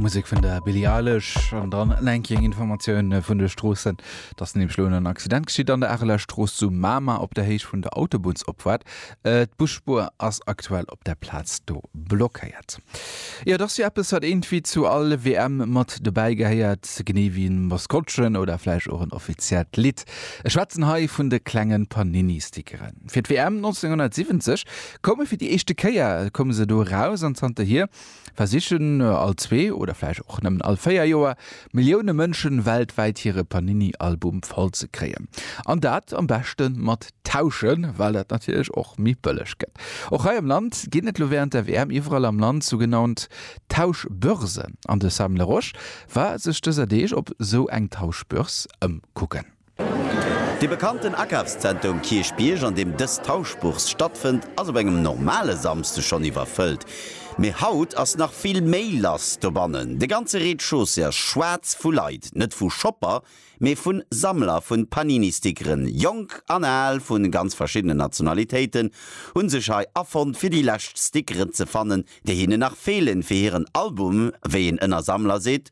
Musik vun der Billie Eilish an dann enking Informatioun vun de Stroossen, dats nem schlo en Accident geschitt an der Areler Strooss zu Mamer op der Héicht vun der Autobunnsopfahrt. Äh, D'Busspuer ass aktuell op der Plaz do blockéiert. Jo, et ass jo eppes wat eengtwéi zu all WM mat dobäi gehéiert, genee wéi en Maskottchen oder vläicht och en offiziellt Lidd. Ech schwätzen hei vun de klengen Panini-Stickeren. Fir d'WM 1970 Koume fir déi éischte Kéier koume se do eraus an zanterhier versichen all zwee oder vläicht och nëmmen all véier Joer Millioune Mënsche weltwäit hire Panini-Album voll ze kréien. An dat am beschte mat tauschen, well dat natierlech och méi bëlleg gëtt. Och hei am Land ginn et lo wärend der WM iwwerall am Land sougenannt Tauschbörsen an de Sam Laroche war sech dëser Deeg op esou eng Tauschbörs ëmkucken. De bekannten Akafszenter um Kierchbierg, an deem dës Tauschbourse stattfënnt, ass op engem normale Samsde schonn iwwerfëllt. Mee haut ass nach vill méi lass dobannen. De ganze Rez-de-chaussée ass schwaarz vu Leit, net vu Shopper, mee vu Sammler vu Panini-Stickeren. Jonk an al vu ganz verschiddenen Nationalitéiten hu sech hei afonnt, fir déi lescht Stickeren ze fannen, déi hinnen nach feelen, fir hiren Album, wéi een ënner Sammler seet.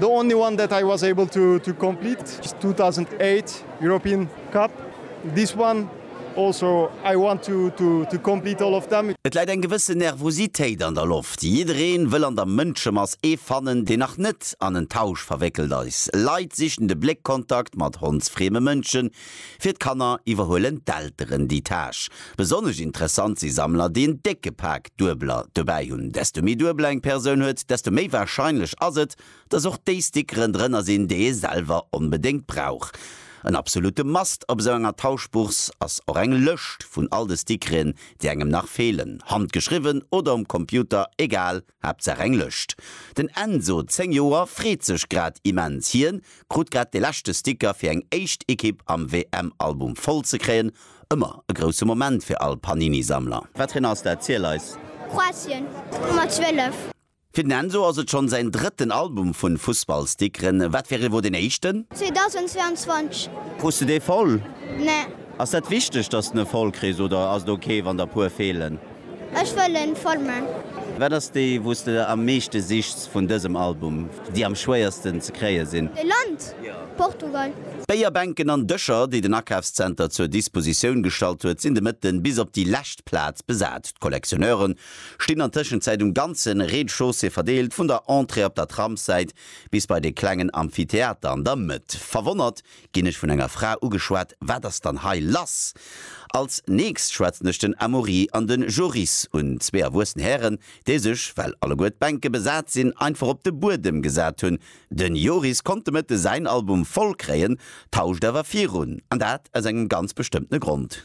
The only one that I was able to to complete is 2008 European Cup. This one also I want to to to complete all of them. Et läit eng gewësse Nervositéit an der Loft. Jiddereen wëll an der Mënschemass ee fannen, deen nach net an en Tausch verwéckelt eis. Leit sichen de Bléckkontakt mat hondsfrieme Mënschen, Fir d'Kanner iwwerhuelen d'Elteren déi Tâche. Besonnesch interessant si Sammler, déi en décke Pak Duebeler dobäi hunn. Desto méi Duebeler eng Persoun huet, desto méi warscheinlech ass et, dass och déi Stick rëndrënner sinn, déi ee selwer onbedéngt brauch. En absolutte Must op esou enger Tauschbourse ass och eng Lëscht vun all de Stickreen, déi engem nach feelen, handgeschriwwen oder um Computer, egal. Haaptsaach eng Lëscht. Den Enzo, 10 Joer, freet sech grad immens. Hien krut grad de leschte Sticker fir eng éischt Ekipp am WM-Album voll ze kréien. Ëmmer e grousse Moment fir all Panini-Sammler. Wat fir en ass dat? Ziel eis! Kroatien, Nummer 12. Fir den Enzo ass et schonn säin drëtten Album vun Fussballstickeren. Wat fir ee wor deen éischten? 2022. Krus de dee voll? Nee. Ass dat wichteg, dass de voll kriss oder ass et ok wann der puer feelen? Ech wëll en voll man. Wat ass déi wous de am meeschte sichts vun dësem Album, déi am schwéiersten ze kréie sinn? E Land, Portugal. D'Béierbänken an Dëscher, déi den Akafszenter zur Dispositioun gestallt huet, sinn de Mëtten bis op déi lescht Plaz besat. D'Collectionneure stinn an Tëschenzäit um ganze Rez-de-chaussée verdeelt, vun der Entrée op der Tramssäit bis bei de klengen Amphitheater an der Mëtt. Verwonnert ginn ech vun enger Fra ugeschwat, Wat ass dann hei lass? Als nächst schwätzen ech den Amaury an de Joris un, zwee erwuessen Hären, déi sech, well alleguer d'Bänke besat sinn, einfach op de Buedem gesat hunn. De Joris konnt de Mëtte säin Album voll kréien, tauscht awer virun, an dat aus engem ganz bestëmmtene Grond.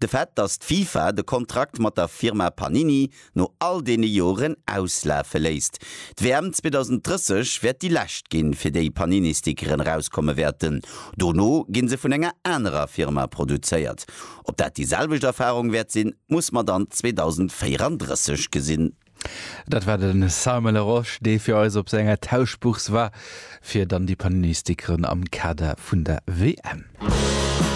De Fait, datt d'FIFA de Kontrakt mat der Firma Panini no all deene Joren auslafe léisst. D'WM 2030 wäert déi lescht ginn, fir déi Panini-Stickeren erauskomme wäerten. Dono gi se vun enger anerer Firma produzéiert. Ob dat déi selwecht Erfarung wäert sinn, muss mer dann 2034 gesinn. Dat war de Simon Larosche, dee fir eis op senger Tauschbourse war, fir dann déi Panini-Stickeren am Kader vun der WM.